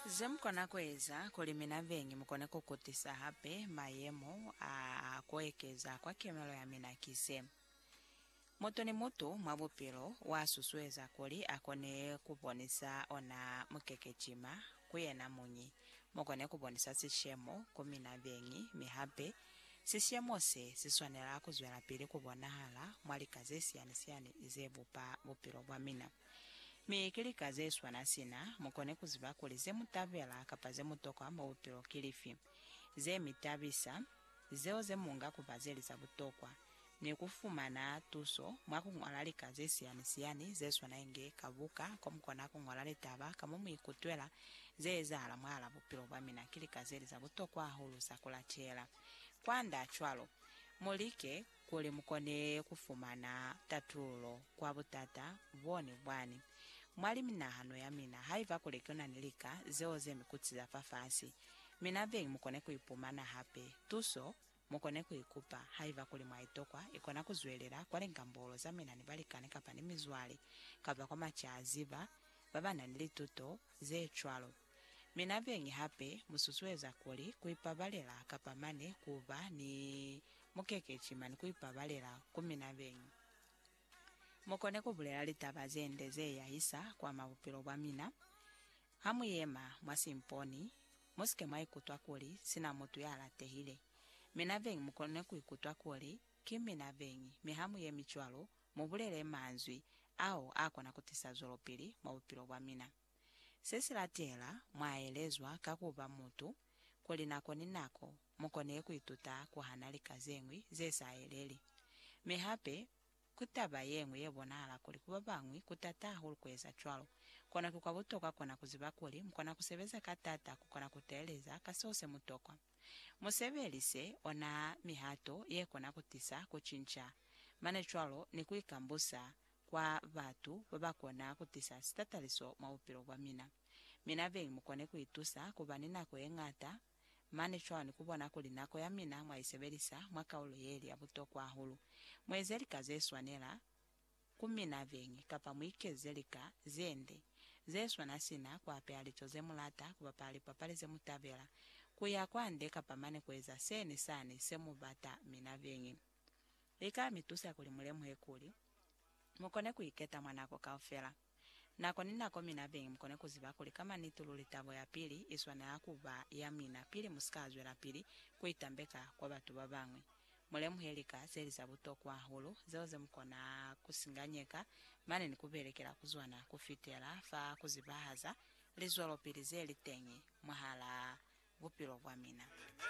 Ze mu kona ku eza kuli mina beñi mu kone ku kutisa hape mayemo a a ku ekeza kwa kemelo ya mina ki ze, Mutu ni mutu mwa bupilo wa susueza kuli a kone ku bonisa ona mukekecima ku yena muñi, mu kone ku bonisa sishemo ku mina beñi, mi hape sishemo se si swanela ku zwelapili ku bonahala mwa lika ze siyani-siyani ze bupa bupilo bwa mina. Mi ki lika ze swana sina mu kone ku ziba kuli ze mu tabela kapa ze mu tokwa mwa bupilo ki lifi, ze mi tabisa, zeo ze mu nga ku ba ze li za butokwa, ni ku fumana tuso mwa ku ñola lika ze siyani-siyani ze swana inge ka buka ko mu kona ku ñola litaba ka mo mu ikutwela ze ezahala mwahal'a bupilo bwa mina ki lika ze li za butokwa hahulu za ku latela. Kwand'a cwalo, mu like Kuli mukone kufumana tatululo kwa butata bone bwani mwa liminahano yamina, haiba kuli kunani lika zeo zemikutsi za fafasi, mina beñi mukone kuipumana hape tuso. Mukone kuikupa haiba kuli mwaitokwa, ikona kuzwelela kwa lingambolo zamina ni balikani kapa ni mizwale, kapa kwa macaziba babanani lituto zecwalo. Mi na beñi hape mu susueza kuli ku ipabalela kapa mane ku ba ni mukekeci mane ku ipabalela ku mina beñi. Mu kone ku bulela litaba ze nde ze yahisa kwa mwa bupilo bwa mina. Ha mu yema mwa simponi, mu si ke mwa ikutwa kuli sina mutu ya latehile. Mina beñi mu kone ku ikutwa kuli ki mina beñi, mi ha mu yemi cwalo, mu bulele manzwi ao a kona ku tisa zwelopili mwa bupilo bwa mina. Se si latela mw'a elezwa ka ku ba mutu, kuli nako ni nako mu kone ku ituta ku hana lika ze ñwi ze sa yeleli. Mi hape ku taba ye ñwi ye bonahala kuli ku ba bañwi ku t'ata hahulu ku eza cwalo. Kono ki kwa butokwa kona ku ziba kuli mu kona ku sebeza ka t'ata ku kona ku teeleza ka seo se mu tokwa. Mu sebelise ona mihato ye kona ku tisa ku cinca, mane cwalo ni ku ikambusa kwa batu babakona kutisa sitataliso mwa bupilo bwa mina. Mina beñi mukone kuitusa kuba ni nako yeñata mane cwalo ni kubona kuli nako ya mina mwaisebelisa mwa kaulo yeli ya butokwa hahulu. Mueze lika zeswanela ku mina beñi kapa muikeze lika zende zeswana sina kuapeha lico zemulata, kubapala lipapali zemutabela, kuya kwande kapa mane kueza seni sani semubata mina beñi. li ka mi tusa kuli mu lemuhe kuli, mu kone ku iketa mwa nako kaufela, nako ni nako mi na beñi mu kone ku ziba kuli ka maniti luli tabo ya pili i swanela ku ba ya mina pili mu si ka zwelapili ku itambeka kwa batu ba bañwi. Mu lemuhe lika ze li za butokwa hahulu zeo ze mu kona ku singanyeka mane ni ku belekela ku zona ku fitela fa ku zibahaza lizwelopili ze li teñi mwahalaa bupilo bwa mina.